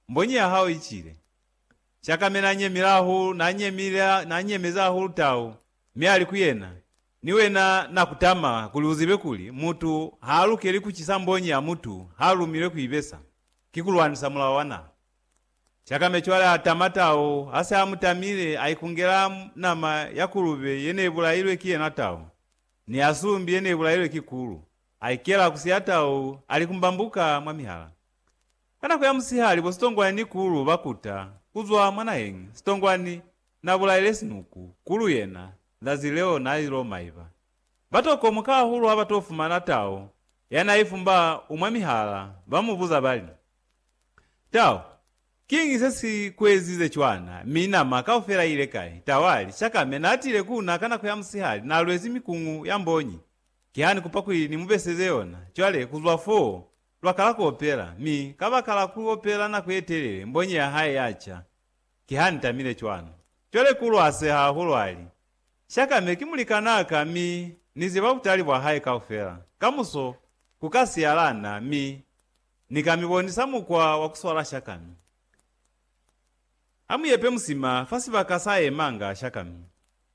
Mbonyi ya hao icile. Cakame nanyemile hahulu, nanyemile, nanyemezi hahulu tau, mi ali ku yena, Ni wena, Na kutama kuli uzibe kuli, mutu haalukeli kucisa mbonyi ya mutu haalumilwe kuibesa. Ki kulwanisa mulao wa naha. Cakame cwale atama tau, hase amutamile, aikungela nama ya kulube yeneibulailwe ki yena tau, ni ya sumbi yeneibulailwe ki kulu, aikela kusi ya tau, alikumbambuka mwa mihala. Ka nako ya musihali bo sitongwani ni kulu ba kuta ku zwa mwa naheñi. Sitongwani na bulaile sinuku. Kulu yena, zazi leo na ilo maiba. Ba to komoka hahulu ha ba to fumana tao ya na ifumba u mwa mihala, ba mu buza ba li, Tao, kiñi se si ku ezize cwana, mi nama kaufela i ile kai? Tao a li, Shaka me na tile ku na ka nako ya musihali, na lwezi mikuñu ya mbonyi. Ki ha ni kupa kuli ni mu beseze yona, cwale ku zwa foo Lwa kala ku opela, mi kabakala ku opela nako ye telele, mbonyi ya hae ya ca. Ki ha ni tamile cwalo. Cwale ku lwase hahulu a li, Shaka, me ki mulikanaa ka, mi Ni ziba butali bwa hae kaufela. Kamuso, ku ka siyala na, mi Ni ka mi bonisa mukwa wa ku swala shakami. A mu yepe musima fa sibaka sa yemanga shakami.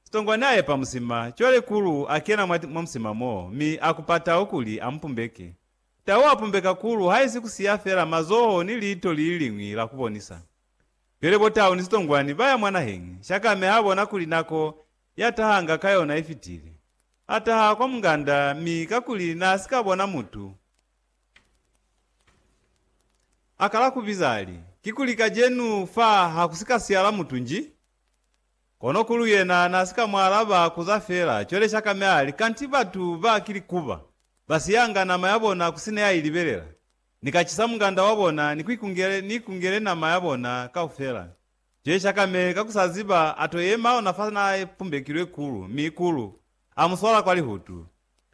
Sitongwani a epa musima, cwale Kulu a kena mwa, mwa musima moo, mi a ku patau kuli a mu pumbeke. Tau a pumbeka kulu haisi ku siya fela mazoho ni liito li liliñwi la ku bonisa. Pele bo tau ni sitongwani ba ya mwa naheñi, Shakame ha bona kuli nako ya tahanga ka yona i fitile. A taha kwa munganda mi kakuli n'a si ka bona mutu, a kala ku biza a li, Kikuli kajenu fa ha ku si ka siyala mutu nji? Kono kulu yena na si ka mu alaba, kuza fela, cwale Shakame a li, Kanti batu ba ki likuba, ba siyanga nama ya bona ku sina ya i libelela. Ni ka cisa munganda wa bona, ni ku ikungele, ni ikungele nama ya bona kaufela. Cwale Shakame, ka ku sa ziba, a to yema ona fa na pumbekilwe kulu, mi kulu a mu swala kwa lihutu.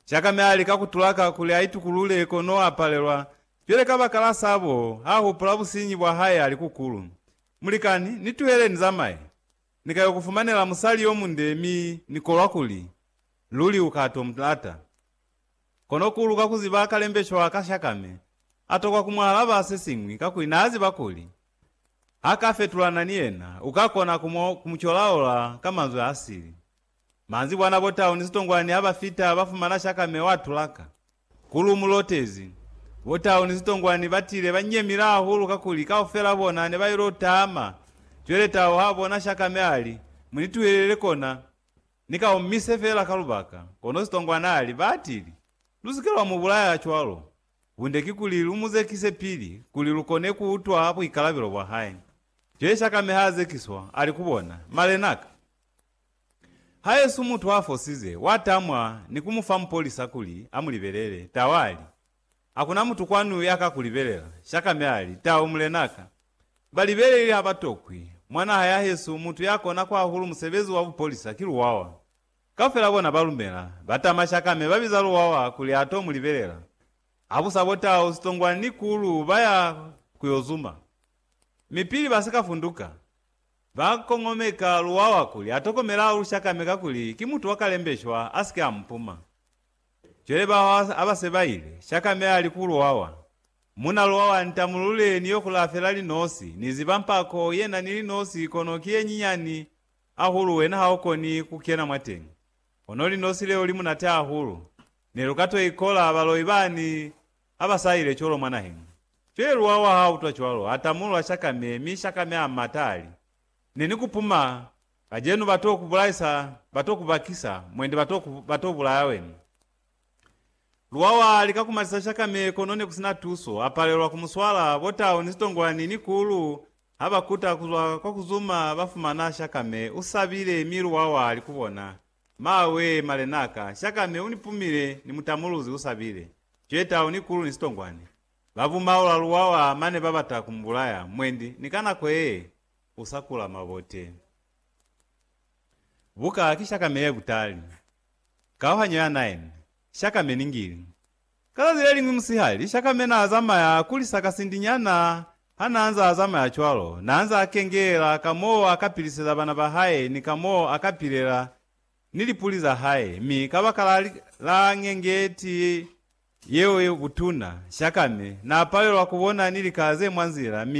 Shakame a lika ku tulaka kuli a itukulule, kono a palelwa. Cwale kabakala sabo, ha hupula businyi bwa hae a li ku kulu. Mulikani, ni tuhele ni zamaye. Ni ka yo ku fumanela musali yo munde mi ni kolwa kuli luli u ka to mu lata. Kono ku luka ku ziba kalembesho wa ka shakame a tokwa ku mu alaba se siñwi kakuli n'a ziba kuli ha ka fetulana ni yena u ka kona ku mu ku mu colaola ka manzwi a sili. Manzibwana bo tau ni sitongwani ha ba fita ba fumana shakame wa tulaka. Ku lu mu lotezi, bo Tau ni Sitongwani ba tile ba nyemile hahulu kakuli kaufela bona ne ba il'o tama. Cwele Tau ha bona Shaka mi a li, Mu ni tuhelele kona, ni ka omise fela ka lubaka. Kono Sitongwani a li, Ba atili, Lu si ke lwa mu bulaya cwalo. Bunde ki kuli lu mu zekise pili, kuli lu kone ku utwa buikalabelo bwa hae. Cwele Shaka mi ha zekiswa, a li ku bona, Malenaka, Haesu mutu a fosize, wa tamwa ni ku mu fa mupolisa kuli a mu libelele. Tau a li, Hakuna mutu kwanu ya ka ku libelela. Shakame a li, Tau, mulena ka. Ba libeleli ha ba tokwi. Mwa naha ya hesu, mutu ya kona kwa hahulu musebezi wa bupolisa ki luwawa. Kaufela bona ba lumela. Ba tama Shakame, ba biza luwawa kuli a to mu libelela. Ha bu sa bo Tau, Sitongwani ni Kulu ba ya ku yo zuma. Mi pili ba si ka funduka, Ba kongomeka luwawa kuli a tokomelaa ulushakame kakuli ki mutu wa kalembeshwa a si ke a mu puma. Cwale ba hwa ha ba se ba ile, shakame a li ku luwawa, Muna luwawa, ntamulule ni yo kulaa fela linosi, ni ziba mpako ye na ni linosi kono ki ye nyinyani ahulu wena ha u koni ku kena mwateñi. Kono linosi leo li munate ahulu. Ne lu ka to ikola baloi bani. Ha ba sa ile cwalo mwa naheng, Feruwa wa ha utwa cwalo, a tamulula Shakame, mi Shakame a mata, a li, Ne ni ku puma, kacenu ba t'o ku bulaisa, ba t'o ku bakisa, mwendi ba t'o ku, ba t'o bulaya wena. Ruwa wa lika ku matisa Shakame, kono ne ku si na tuso, a palelwa ku mu swala. Bo tau ni sitongwani ni kulu ha ba kuta ku zwa kwa ku zuma, ba fumana Shakame u sabile, mi Ruwa wa li ku bona, Maawee, malenaka, shaka mi unipumile ni mutamuluzi usabile, cweta, unikulu ni sitongwani. Bavuma ola luwawa mane babata kumubulaya, mwendi, ni ka nako yee, usakula mabote. Buka ki shaka me yekutali. Kauhanyo ya nine, shaka me ningili. Kana zileliñwi musihali Shakame naazamaya kuli sakasindinyana hanaanza azamaya cwalo, naanza akengeela ka moo akapiliseza bana bahae ni ka moo akapilela ni lipuli zahae, mi kabakala la ngengeti yeo yebutuna, Shakame naapalelwa kubona ni lika ze mwa nzila, mi